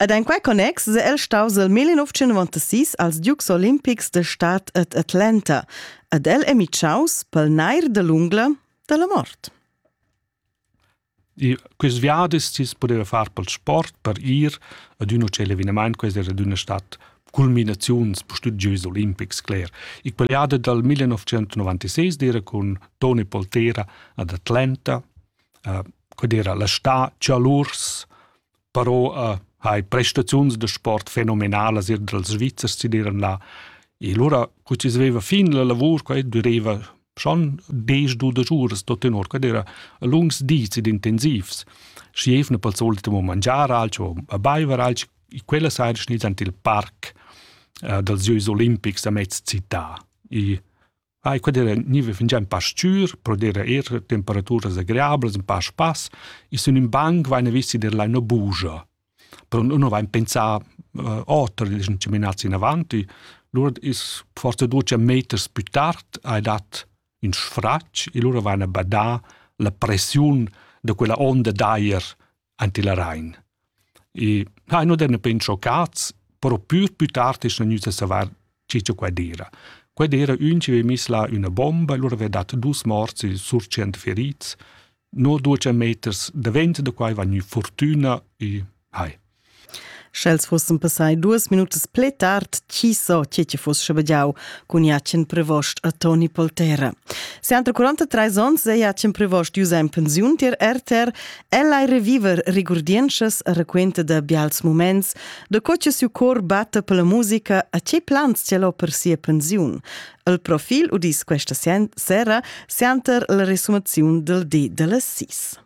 Ed en quei connex se el staus el 1996 als Dukes Olimpics de Stadt et Atlanta ed el è mitschaus pel nair de l'ungla della mort. E quest viadis tis pudeva far pel sport per ir ad un hotel evenement, quest era d'una stat culminaziuns studios olimpics cler. Ich paliade dal 1996 dire con Tony Poltera ad Atlanta codera la sta chalurs però uh, hai prestaziuns da sport fenomenalas ir dals Svizzers si diran là e lura cu si sveva fin la lavur qua dureva schon des du da giuras da tenor qua era lungs dis ed intensivs schi evna pel solito mo mangiar alcho a baiver alcho quella sera schniz ant il parc uh, dals Jeux Olimpics a mezz città e Ai quedera niva fingià ün pa s-chür, però d'eira eir temperaturas agreablas, ün pa spass. I sun ün banc vaina visti d'eir laina bugia. Però nun vain pensà oter, dischan chaminats inavant. Lura es forsa duos meters pü tard hai dat ün sfratg e lura vaina badà la pressiun da quella onda d'ajer ante la Rain. E ha no den pen schoccats, però pür più tard es gnüt a savar che cha quai d'eira. Quai d'eira ün chi aveva miss là üna bomba e lura aveva dat dus morts e sur tschient ferits. No duos meters davent da quai va gnü fortüna e hai. Sch'els fussen passai duas minutas ple tard, chi so che ti fuss schabagiau cun Jacen Prevost a Toni Poltera. Se entre 43 ons è Jacen Prevost ius en pensiun tier RTR, el ai reviver rigurdienschas a raquenta da bials moments, da co che siu cor batta per la musica a che plans ce l'ho per sia pensiun. Il profil udis questa sera, sera, senter la resumaziun del di delle sis.